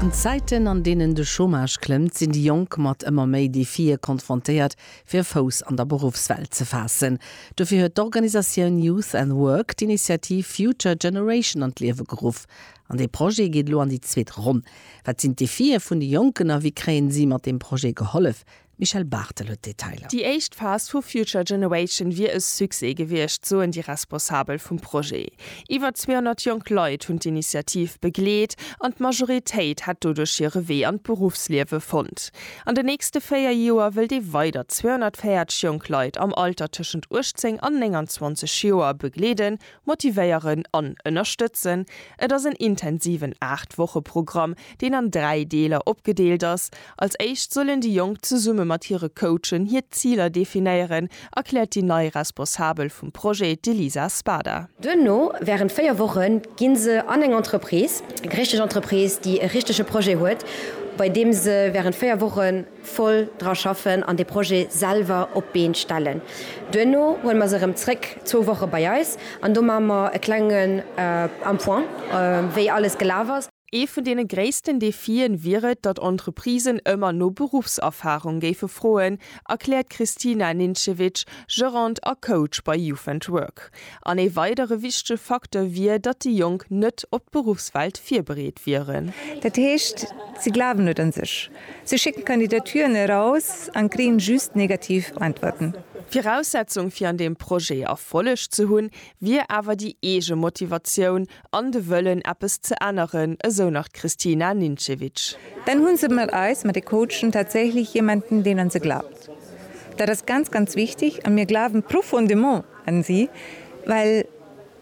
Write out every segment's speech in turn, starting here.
An Zäiten, an deenen de Chômage klëmmt, sinn déi Jonk mat ëmmer méi Defie konfrontéiert, fir e Fouss an der Beruffswelt ze faassen. Dofir huet d'Organisatioun Youth and Work d'Initiativ Future Generation an d'Liewe geruff. An dee Projet geet elo an déi zweet Ronn. Wat sinn d'Defie vun de Jonken a wéi kréien si mat deem Projet gehollef? D'Michèle Barthel huet d'Detailer. Déi éischt Phas vu Future Generation wier e Succès gewiescht, soen déi Responsabel vum Projet. Iwwer 200 jonk Leit hunn d'Initiativ begleet an d'Majoritéit hätt doduerch hire Wee an d'Beruffsliewe fonnt. An den nächste véier Joer wëllt ee weider 240 jonk Leit am Alter tëschent 18 an 29 Joer begleeden Motivéieren an ënnerstëtzen, Et ass en intensiven 8 Woche Programm, deen an 3 Deeler opgedeelt ass. Als éischt sollen déi Jonk zesumme mat hire Coachen hir Ziler definéieren, erkläert déi nei Responsabel vum Projet, d'Elisa Spada. Duerno, wärend 4 Woche ginn se an eng Entreprise, eng richteg Entreprise, déi e richtege Projet huet, bei deem se wärend 4 Wochen, voll dra schaffen an de Projet selwer op d'Been stellen. Duerno huele mer se erëm zréck zwou Woche bei eis an do maache mer e klengen en point, wéi alles gelaf ass. Ee vun deene gréissten Defien wier et, datt Entreprisen ëmmer no Beruffserfahrung géife froen, erkläert d'Kristina Nincevic, Gerant a Coach bei Youth and Work. An ee weidere wichtege Facteur wier, datt déi Jonk net op d'Beruffswelt virbereet wieren. Dat heescht, si glawen net un sech. Si schécken Kandidaturen eraus an kréien just negativ Äntwerten. Viraussetzung fir an deem Projet Erfolleg ze hunn, wier awer déi eege Motivatioun an de Wëllen eppes ze änneren, esou nach d'Kristina Ninčević. Dann hunn se mat eis, mat de Coachen, tatsächlech jemanden, deen an se glaubt. Dat ass ganz, ganz wichteg a mir glawen profondément an si, well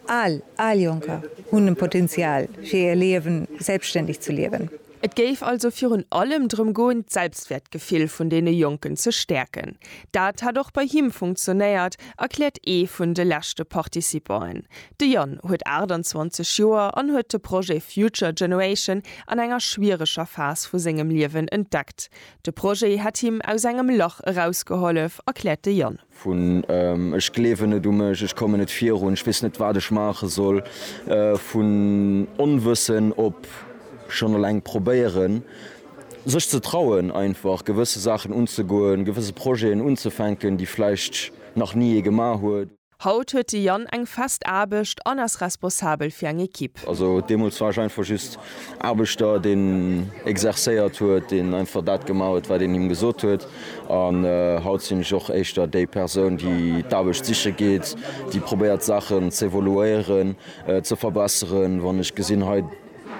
all, all Jonker hunn e Potenzial fir hir Liewen selbstständig ze liewen. Et géif also virun allem drëm goen, d'Selbstwäertgefill vun deene Jonken ze stäerken. Dat hätt och bei him funktionéiert, erkläert ee vun de leschte Participanten. De Yann huet 28 Joer an huet de Projet Future Generation an enger schwiereger Phas vu sengem Liewen entdeckt. De Projet hätt him aus engem Lach erausgehollef, erkläert de Yann. vun ech gleewen net u mech, ech kommen net virun, ech weess net, wat ech maache soll, vun Onwëssen op schonn eleng probéieren, sech ze trauen, einfach gewësse Saachen unzegoen, gewësse Projeten unzefänken, déi vläicht nach ni ee gemaach huet. Haut huet de Yann eng fest Aarbecht an ass responsabel fir eng Ekipp. Also deemools war ech einfach just Aarbechter, deen exercéiert huet, deen einfach dat gemaach huet, wat een him gesot huet. An haut sinn ech och éischter déi Persoun, déi d'Aarbecht siche geet, déi probéiert d'Saachen z'evoluéieren, ze verbesseren. Wann ech gesinn, hei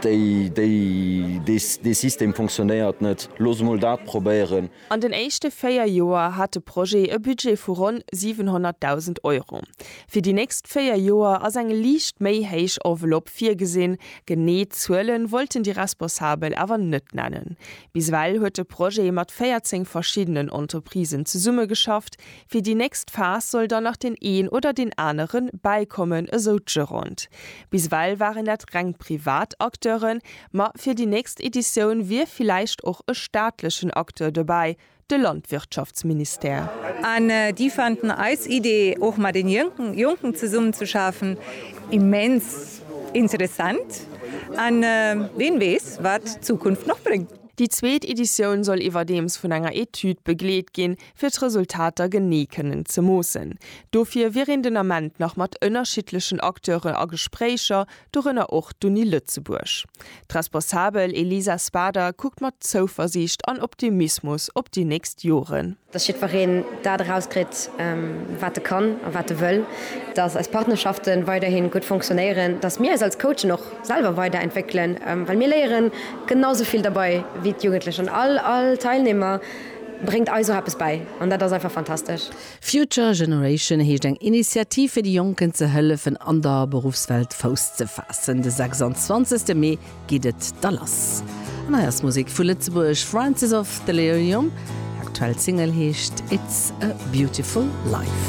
déi, déi, dee System funktionéiert net, looss emol dat probéieren. An den éischte véier Joer hat de Projet e Budget vu ronn 700.000 Euro. Fir déi nächst véier Joer ass eng liicht méi héich Enveloppe virgesinn. Genee Zuele wollten déi Responsabel awer net nennen. Bis ewell huet de Projet mat 14 verschiddenen Entreprisen zesummegeschafft. Fir déi nächst Phas soll dann nach deen een oder deen anere bäikommen, esou d'Gerande. Bis ewell waren dat reng privat Acteuren, ma fir déi nächst Editioun wier villäicht och e staatlechen Acteur dobäi, de Landwirtschaftsministère. An déi fanden eis Idee, och mat den Jonken zesummen ze schafen, immens interessant. An ween weess, wat d'Zukunft nach bréngt. Déi zweet Editioun soll iwwerdeems vun enger Etüd begleet ginn, fir d'Resultater genee kënnen ze moossen. Dofir wier een den Ament nach mat ënnerschiddlechen Acteure a Gespréicher, dorënner och d'Uni Lëtzebuerg. D'Responsabel Elisa Spader kuckt mat Zouversiicht an Optimismus op déi nächst Joren. Dass jiddwereen dat erauskritt, wat e kann a wat e wëll, dass eis Partnerschaften weiderhin gutt fonctionnéieren, dass mir eis als Coachen och selwer weider entwéckelen, well mir léieren genau esou vill derbei wéi d'Jugendlech an all Teilnehmer. bréngt eis och eppes bäi an dat ass einfach fantastesch. Future Generation heescht eng Initiativ fir de Jonken ze hëllefen an der Beruffswelt Fouss ze faassen. De 26 Mee geet et da lass an hei ass Musek vu Lëtzebuerg, Francis of Delirium, aktuell Single heescht It's a Beautiful Life.